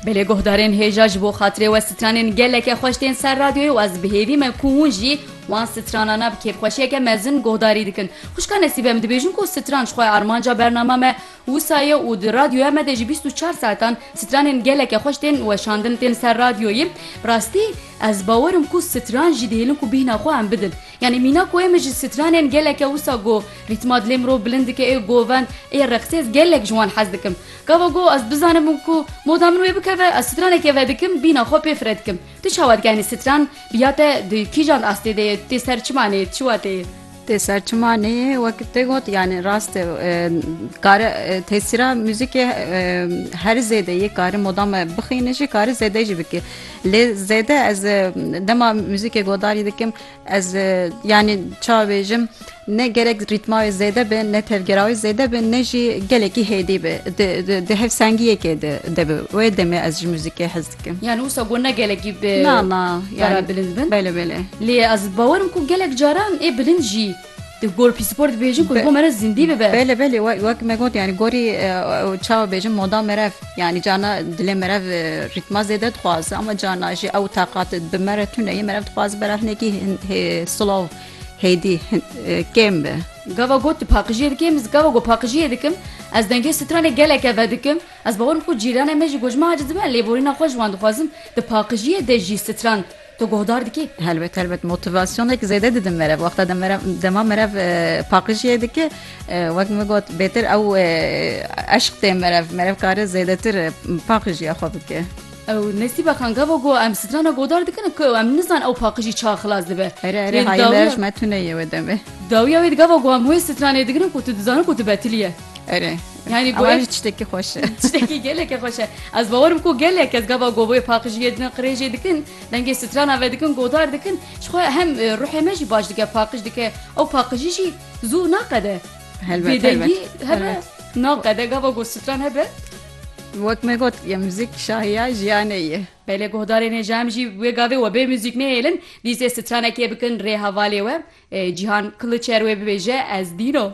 Belê guhdarên hêja ji bo xatirê we stranên geleke xweş tên ser radyoyê û ez bi hêvî me ku hûn jî wan stranana bi kêfxweşiyeke mezin guhdarî dikin. Xwişka Nesîbe em dibêjin ku stran ji xwe ye armanca bernama me wisa ye û di radyoya me de ji bîst û çar saetan stranên geleke xweş tên weşandin tên ser radyoyê. Bi rastî ez bawer im ku stran jî dihêlin ku bîhna xwe em bidin. Yanî mîna ku ê min ji stranên gelek e wisa go rîtma dilê mirov bilind dike ê govend ê reqsê ez gelek ji wan hez dikim. Gava go ez bizanim ku moda min wê bikeve ez stranekê vedikim bîna xwe pê fire dikim. Tu çawa dike yanî stran biya te di kîjan astê de ye tu tê ser çima neyê tu çiwa tê yê. Tê ser çima neyê wek te got yanî rast e kare tesîra muzîkê her zêde yê kare moda me bixîne jî kare zêde jî bike. Lê zêde ez dema muzîkê godarî dikim ez yanî ça bêjim ne gerek rîtma wê zêde be ne tevgera wê zêde be ne jî gelekî hêdî be di hev sengiyekê de de bi wê demê ez ji muzîkê hez dikim yani wisa got ne gelekî be na na yani bilind bin bele bele lê ez bawerim ku gelek caran ê bilind jî Di gor pîspor dibêjin ku bo me re zindî bibe. Belê belê wek me got yani gorî çawa bêjin moda merev yani carna dilê merev rîtma zêde dixwaze ama carna jî ew taqat bi me re tune yê merev dixwaze bera hinekî silav hêdî kêm bi. Gava got tu paqijiyê dikê min gava got paqijiyê dikim ez dengê stranê geleke vedikim ez bawer bikim ku cîranê me jî got ji min aciz dibe lê borîna xwe ji wan dixwazim di paqijiyê de jî stran Tu guhdar dikî? Helbet helbet motivasyonek zêde didin merev wexta de merev dema merev paqijiyê dike wek min got bêtir ew eşq tê merev merev kare zêdetir paqijiya xwe bike. Ew nesîba kan gava got em strana guhdar dikin ku ew em nizan ew paqijî ça xilas dibe. Ere ere hayê merev ji me tuneyê wê demê. Dawiya wê di gava got em wê stranê digirin ku tu dizanin ku tu betilî ye. Ere Yani bu ev tiştekî xweş e. Tiştekî gelekî xweş e. Ez bawerim ku gelek ez gava govê paqijiyê dikin qirêjê dikin dengê strana ve dikin godar dikin ji xwe hem e, ruhê me jî baş dike paqij dike ew paqijî jî zû naqede bêdengî hebe naqede gava ku stran hebe Wek me got ya müzik şahiya jiyanê ye. Belê guhdarê nê jem jî wê gavê we bê müzik nêhêlin dîsê stranekê bikin rê hevalê we e, Cîhan Kiliçer wê bibêje ez dîno.